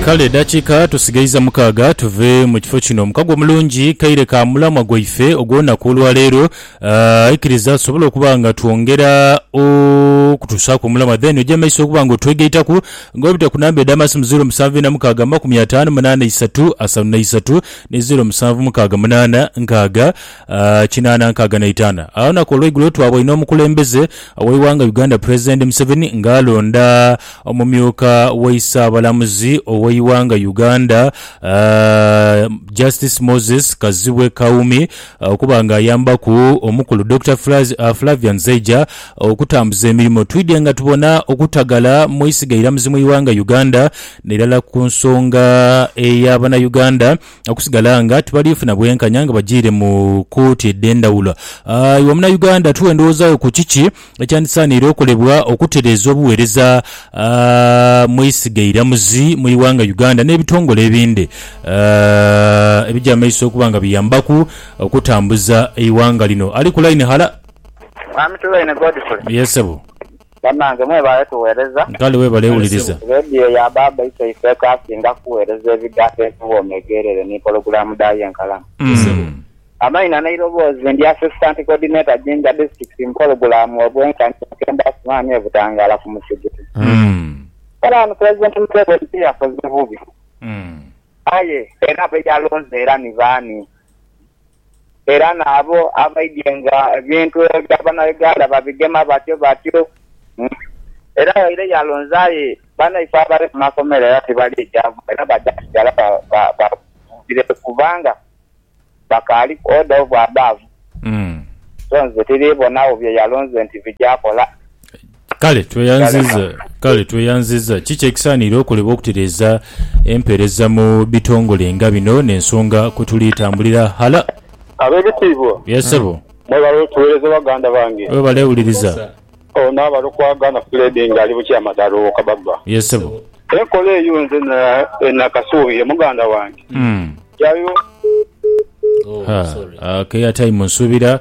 Kale edhakiika tusigaiza mukaaga tuve mu kifo kino. Mukago mulungi kaire ka mulamwa gwaife ogw'olunaku olwaleero. Ah, ikiriza tusobole okuba nga twongera okutusaaku omulamwa then oje mu maiso okuba nga otwegaitaku nga obita ku namba edh'amasimu zeero musanvu ina mukaaga amakumi ataanu munaana isatu asatu na isatu ni zeero musanvu mukaaga munaana nkaaga kinaana nkaaga na itaana. Olunaku olweigulo twaboine omukulembeze oweighanga Uganda President Museveni nga alonda omumyuka waisaabalamuzi oweighanga Uganda Justice Moses Kazibwe Kawumi okuba nga ayambaku omukulu Dokita Flavian Zeija okutambuza emirimo. Twidhye nga tubona okutagala mweisiga eiramuzi mwighanga Uganda nairala kunsonga eya banauganda. okusigala nga tibaliifuna bwenkanya nga bajiire mu kooti edh'endhawulo. Ah, iwe Munauganda, tuwe endowooza yo ku kiki ekyandisaaniire okolebwa okutereeza obuweereza ah, mu isiga eiramuzi mu ighanga Uganda n'ebitongole ebindi ah, ebija amaiso okuba nga biyambaku okutambuza eighanga lino. Ali ku line, hala. Mwami Tuweine Godfrey. Yes, sebo. Banange mwebale tughereza. Kale webale wuliriza. Radio ya baaba ise ifeka asinga kughereza ebigambo ebiwooma egheerere ni pologulaamu dhaayo enkalamu. Amaina n'eiroboozi ndi Assistant Coordinator Jinja District mu pologulaamu Obwenkanya Bukemba Asuman e Butangala ku musigiti. Kale wano President Museveni tiyakoze bubi aye era beyalonze era ni baani? era n'abo abaidhie nga ebintu ebya Banauganda babigema batyo batyo. Era yaire yalonza aye banaifo abali ku makomera era tibaliijamu era baja kusigala baghumbireku kubanga bakaaliku order of above. So nze tiriibonagho bye yalonze nti bija kola. Kale tweyanziza, kale tweyanziza. Kiki ekisaanire okolebwa okutereeza empeereza mu bitongole nga bino n'ensonga kwe tuli tambulira ghala? Ab'ebitiibwa. Yes, ssebo. Mwebale otuweereza baganda bange. Webale wuliriza. Ono abali okwagaana Fred nga ali bukya amadaala owoka baba. Yes, ssebo. Enkola eyo nze e nakasuubire muganda wange. Yayo. Oh, sorry. Haa, ake airtime nsuubira.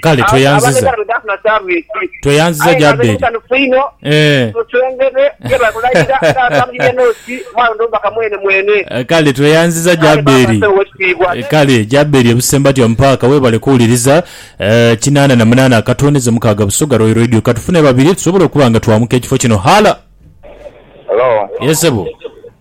Kale tweyanziza. Tweyanziza gya Abbeeri. Eeh. Kale tweyanziza gya Abbeeri. Kale gya Abbeeri e Busembatya mu paaka webale kuwuliriza. Eeh kinaana na munaana akatondeze mukaaga Busoga Royal Radio. Katufune babiri tusobole okuba nga twamuka ekifo kino. Halo. Hello. Yes sebo.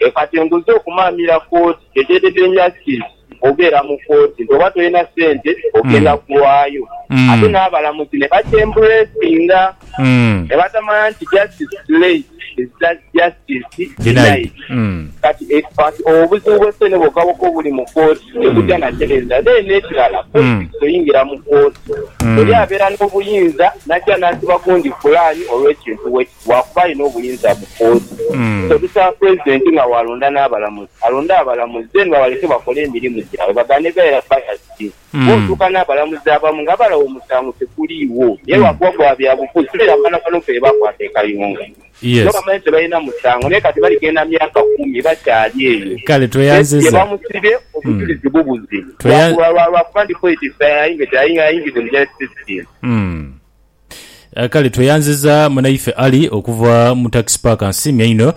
E kati enguzi okumaamira kooti kyekyededenya ki obeera mu kooti nti oba tolina sente ogenda kulwayo ate n'abalamuzi ne bakyembulesinga ne batamanya nti justice delayed is justice denied. Kati e kati obuzibu bw'esente bwokaboka obuli mu kooti tebugya na tereeza then n'ekirala politics oyingira mu kooti oli abeera n'obuyinza n'ajja n'asiba gundi pulaani olw'ekintu we lwakuba alina obuyinza mu kooti so bisaba president nga walonda nabalamuzi alonde abalamuzi then babaleke bakole emirimu gyabwe bagane beera biased kuba otuuka nabalamuzi abamu nga balaba omusango teguliiwo naye lwakuba gwa byabufuzi toyira abaana bano bebakwata e kayunga nga bamanyi tebalina musango naye kati baligenda myaka kumi bakyali eyo kesi yebamusibye obujulizi bubuze lwakuba ndi politics aye nga teyayingize mu justice system. Kale tweyanziza munaife Ali okuva mu tax park nsimye inho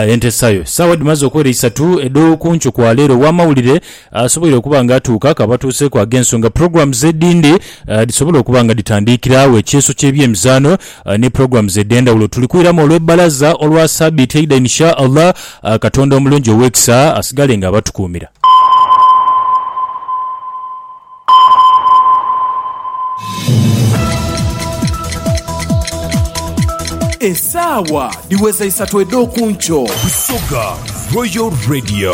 entesayo. Saawa dhimaze okwera isatu edhokunkyo kwa leero owamawulire asoboire okuba nga atuuka akaba atuuseku agensonga programs edhindi dhisobole okuba nga dhitandiikira agho ekyeeso kyebyemizaano ni programs edhendhawulo tuli kwiramu olwe balaza olwa sabiiti eidha in sha Allah katonda omulungi owekisa asigale nga abatukuumira. Esaawa dhiweza isatu edh'oku nkyo. Busoga Royal Radio.